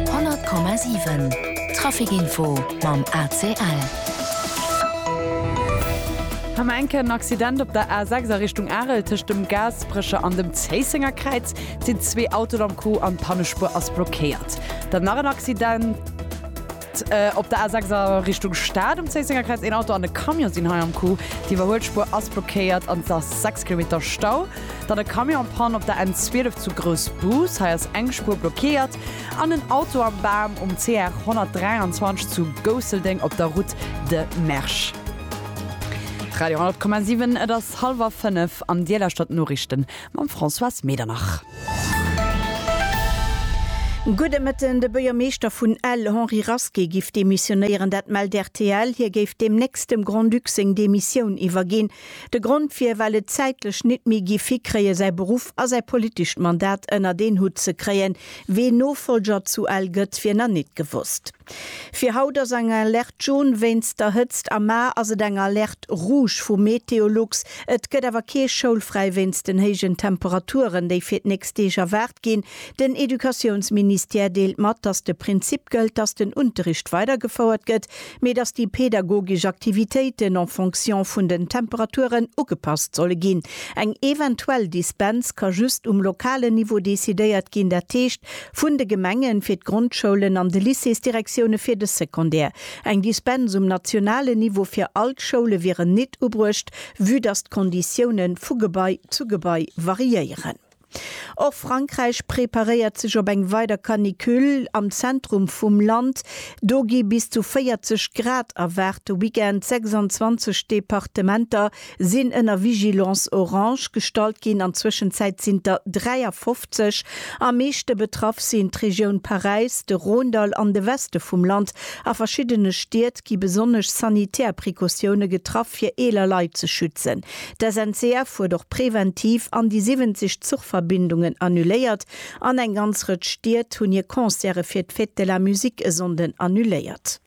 100,7 Traficinfo mam ACL. Am enken en Accident op der A6 a Richtung Arel tëscht dem Gaasperecher an dem Zéissenger Kräiz sinn zwee Autoen am Coup an d'Pannespuer ass blockéiert. Dann nach en Accident. Op der A6 a Richtung Stad um Zéisséngerkräiz, een Auto an e Camion sinn hei am Coup. D'Iwwerhuelspuer ass blockéiert an et ass 6 Kilometer Stau. Dann e Camion an Panne op der N12 zu Groussbus, hei ass eng Spuer blockéiert. An en Auto am Bam um CR 123 zu Gousseldeng op der Route de Mersch. Radio 100,7 Et ass hallwer 5 an Dir lauschtert d'Noriichten. Mam Françoise Medernach. Gudde Mëtten, De Buergermeeschter vun Ell, Henri Rasqué, giff demissionéieren, dat mellt rtl. Hie géif deemnächst dem Grand-Duc seng Demissioun iwwerginn. De Grond wier, well et zäitlech nit méi giff hikréien, säi Beruff a säi politescht Mandat ënnert een Hutt ze kréien. Ween Nofolger zu Ell gëtt, wier na nit gewosst. Fir haut ass eng Alerte Jaune wéinst der Hëtzt a mar ass et eng Alerte Rouge vu Meteolux. Et gëtt awer kee schoulfräi wéinst den héijen Temperaturen, déi fir d'nächst Deeg erwaart ginn. Den Educatiounsministère deelt mat, dass de Prinzip gëllt, dass den Unterricht weidergefouert gëtt, mee dass déi pedagogesch Aktivitéiten en fonction vun den Temperaturen ugepasst solle ginn. Eng eventuell Dispens ka just um lokalen Niveau decidéiert ginn, dat heescht, Vun de Gemengen fir d'Grondschoulen an de Lycéesdirektioune fir de Secondaire. Eng Dispens um nationalen Niveau fir all d'Schoule wieren nit ubruecht, vue dass d'Konditioune vu Gebai zu Gebai variéieren. Och Frankräich preparéiert sech op eng weider Canicule. Am Zentrum vum Land do gi bis zu 40 Grad erwaart de Weekend. 26 Departementer sinn ënner Vigilance orange gestallt ginn an Zwëschenzäit sinn der 53. Am meeschte betraff sinn d'Regioun Paräis, de Rhônedall an de Weste vum Land. A verschiddene Stied gi besonnesch sanitär Precautioune getraff, fir eeler Leit ze schützen. D'SNCF huet och preventiv an déi 70 Zuchverbindungen annuléiert an eng ganz Rëtsch Stied hunn hir Concerte fir d'Fête de la Musique e Sonnden annuléiert.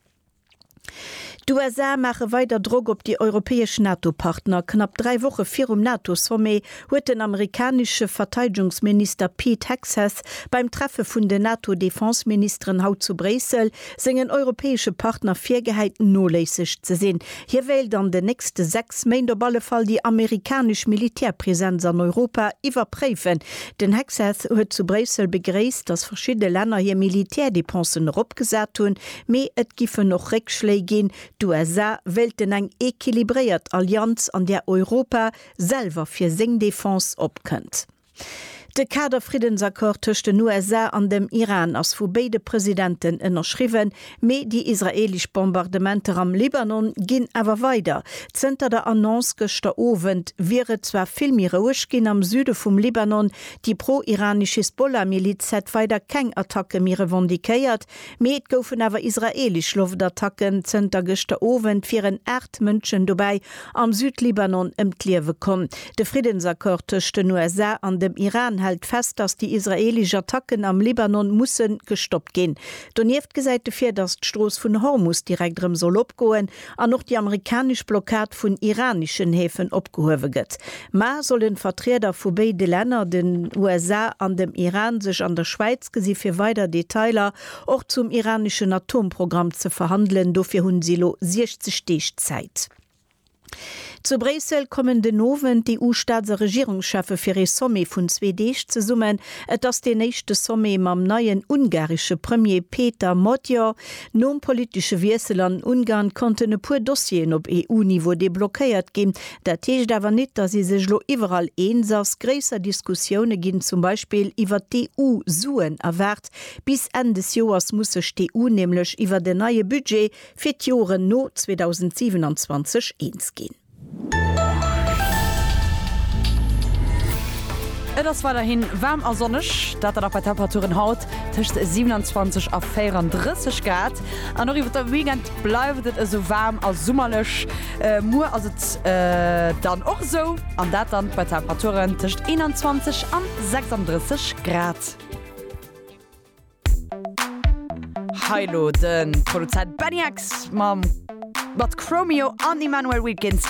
D'USA maache weider Drock op déi europäesch NATO-Partner. Knapp dräi Woche virum NATO-Sommet huet den amerikanesche Verteidegungsminister Pete Hegseth beim Treffe vun den NATO-Defenseministeren haut zu Bréissel sengen europäesche Partner virgehäit, noléisseg ze sinn. Hie wéilt an den nächste sechs Méint op alle Fall déi amerikanesch Militärpresenz an Europa iwwerpréifen. Den Hegseth huet zu Bréissel begréisst, datt verschidde Länner hir Militärdepensen eropgesat hunn. Mee et giffen och Réckschléi ginn. D'USA wéilten eng equilibréiert Allianz, an där Europa selwer fir seng Defense opkënnt. De Kader-Friddensaccord tëscht den USA an dem Iran ass vu béide Presidenten ënnerschriwwen, mee déi israeelesch Bombardementer am Libanon ginn awer weider. Zënter der Annonce gëschter Owend wier et zwar vill méi roueg ginn am Süde vum Libanon. Déi pro-iranesch Hisbollah-Miliz hätt weider keng Attacke méi revendiquéiert, Mee et goufen awer israeelesch Loftattacken. Zënter gëschter Owend wieren 8 Mënschen dobäi am Südlibanon ëm d'Liewe komm. De Friddensaccord tëscht den USA an dem Iran hält fest, datt déi israeelesch Attacken am Libanon musse gestoppt ginn. Donieft gesäit e vir, datt d'Strooss vun Hormus direkt erëm soll opgoen. an och déi amerikanesch Blockad vun iraneschen Häfen opgehuewe gëtt. Mar sollen Vertrieder vu béide Länner, den USA an dem Iran, sech an der Schwäiz gesi fir weider Detailer och zum iraneschen Atomprogramm ze verhandelen, dofir hunn si elo 60 Deeg Zäit. Zu Bréissel kommen den Owend d'EU-Staats a Regierungscheffe fir ee Sommet vun zwee Deeg zesummen. Et ass deen éischte Sommet mam neien ungaresche Premier Péter Magyar. Nom politesche Wiessel an Ungarn konnten e puer Dossieren op EU-Niveau deblockéiert ginn. Dat heescht awer nit, datt ee sech lo iwwerall eens ass. Gréisser Diskussioune ginn zum Beispill iwwert d'EU-Suen erwaart. Bis Enn des Joers muss sech d'EU nämlech iwwert en neie Budget fir d'Joren no 2027 eens ginn. Et ass weiderhi waarm a sonneg, dat da nach bei Temperaturen haut tëscht 27 a 34 Grad. An och iwwert de Weekend bleift et esou waarm a summerlech. Muer ass et dann och esou, an dat dann bei Temperaturen tëscht 21 an 36 Grad. Hei elo de Produzent Benny X mat Chromeo an Emmanuel Wilkins.